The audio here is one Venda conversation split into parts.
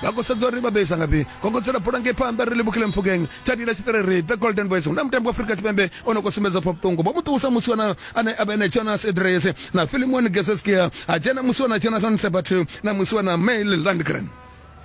vha khou sedza uri vha ḓo isa ngafhi kokodzela bola ngei phanḓa ri livhukile mphukeng tsha dila tshiṱiriri the golden boys hu na mutambi wa afurika tshipembe o no khou sumbedza pfa vhuṱungu vho mu ṱuwisa musi wana ane a vha ene jonas edres na filimon geseskia a dzhena musi wana jonathan sebat na musi wana mail landgren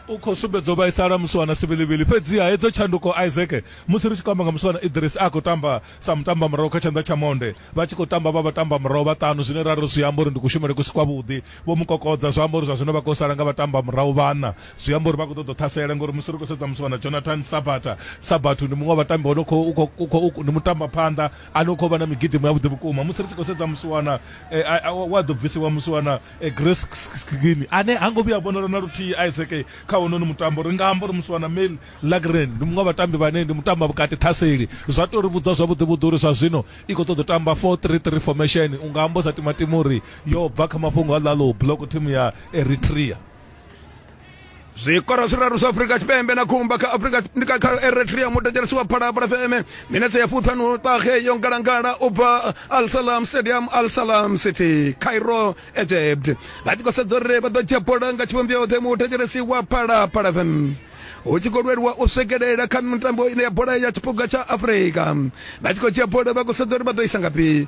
u khou sumbedza u vhaisala musi wana sivhilivhili fhedziha hedzo tshanduko isaac musi ri tshi khou amba nga musi wana idris a khou tamba sa mutamba murahu kha tshanḓa tsha monde vha tshi khou tamba vha vha tamba murahu vhaṱanu zwine ra ri zwi amba uri ndi kushumele ku si kwavhuḓi Vho mu kokodza, zwa amba uri zwa zwino vha khou sala nga vhatambamurahu vhaṋa. Zwi amba uri vha khou ṱoḓa u ṱhasela ngori musi ri khou sedza musi vha na Jonathan Sabatha, Sabathu ndi muṅwe wa vhatambi vha no khou, u khou, u khou, ndi mutambaphanḓa ane u khou vha na migidimo yavhuḓi vhukuma. Musi ri tshi khou sedza musiwana e, a, a, we a ḓo bvisiwa, musiwana e, Grace Sgini, ane ha ngo vhuya a vhonala na luthihi Isaac kha honono mutambo, ri nga amba uri musiwana Mel Lagren ndi muṅwe wa vhatambi vhane ndi mutambavhukati ṱhaseli. Zwa tou ri vhudza zwavhuḓivhuḓi uri zwa zwino i khou ṱoḓa u tamba four-three-three formation. U nga amba u sa timatima uri yo bva kha mafhungo a lalo block team ya eritrea zwikoro zwiraru zwa afurika tshipembe na khumba kha afurika kha eritrea mutetshelesi wa phalaphala fm minetse ya fuṱhanu ṱahe yo ngalangala u bva al salam stadium al salam city cairo egypt vha tshi khou sedza uri vha ḓo dzhia bola nga tshivhumbeo yoṱhe mutetshelesi wa phalaphala fm hu tshi khou lwelwa u swikelela kha mitambo ine ya bola ya tshipuga tsha afurika vha tshi khou dzhia bola vha khou sedza uri vha ḓo isa ngafhi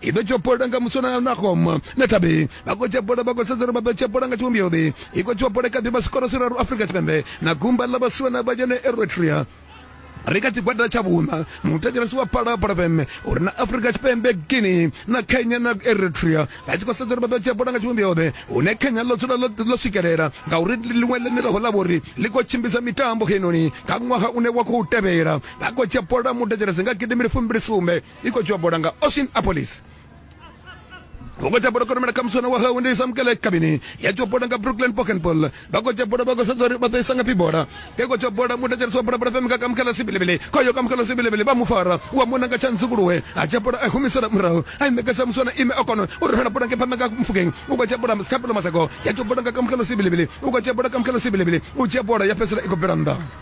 i ḓo tshopola nga muswana na home na thabe vha khou tshopola vha khou sedza uri vha ḓo tshopola nga tshivhumbeo be i khou tshopola kha ḓivha zwikoro zwiraru afrika tshipembe na gumba ḽa vhasiwana vha yone eritrea ri kha tshigwada tsha vhuṋa mutatelesi wa phalaphala fm uri na afrika tshipembe guinea na kenya na eritrea vha tshi khou sedza uri vha ḓo tshiapola nga tshivhumbeo ḓe hune kenya ḽo dzula ḽo swikelela ngauri ḽiṅwe ḽenelaho ḽa vhori ḽi khou tshimbidza mitambo heinoni kha ṅwaha une wa khou tevhela vha khou tshiapola mutatelesi nga gidimbili fumbili sumbe i khou dzhiwa bola nga ocean apolis vhongo tsha bola koromela kha muswana wa hawe ndi isamukele kabini ya tshiwa bola nga brooklyn pokenpol vha khou dzhia bola vha khou sedza uri vha ḓo isa ngafhi bola ke khou dzhia bola muthu dzhenisa wa bola bola fhemi nga kamukela sibilebele khoyo kamukela sibilebele vha mu fara wa mona nga tshantsi kuluwe a dzhia bola a humisela murahu a imekesa muswana ime a kona u rumela bola nge phanḓa nga mufukeng u khou dzhia bola kha bola masako ya tshiwa bola nga kamukela sibilebele u khou dzhia bola kamukela sibilebele u dzhia bola ya fhedzisela i khou bvela nnḓa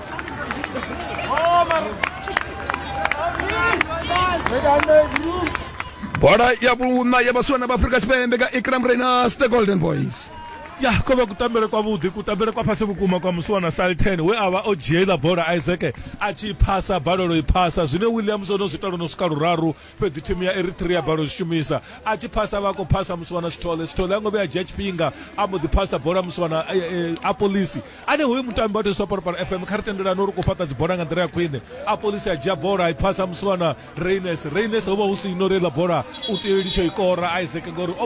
bola ya vhuṋa ya vhasiwana vha afurika tshipembe nga ikram rainers the golden boys ya ko vha kutambele kwavhuḓi kutambele kwa fhasi vhukuma kwa musiwana salten we a vha o dzhiela bola isaac a tshi phasa balelo i phasa zwine williams o no zwi talo no swika luraru fhedzi thimu ya eritrea balo zwi shumisa a tshi phasa vha khou phasa musiwana sithole sithole a ngo vhe a dzhia tshifhinga a mbo ḓi phasa bola musiwana a polisi ane hoyu mutambi wa teswa parapara fm kha ri tendelani uri ku fhaṱa dzibola nga nḓila ya khwine a polisi a dzhia bola i phasa musiwana reines reines ho vha hu si ino reiḽa bola u tea u litsho i kora isaac ngori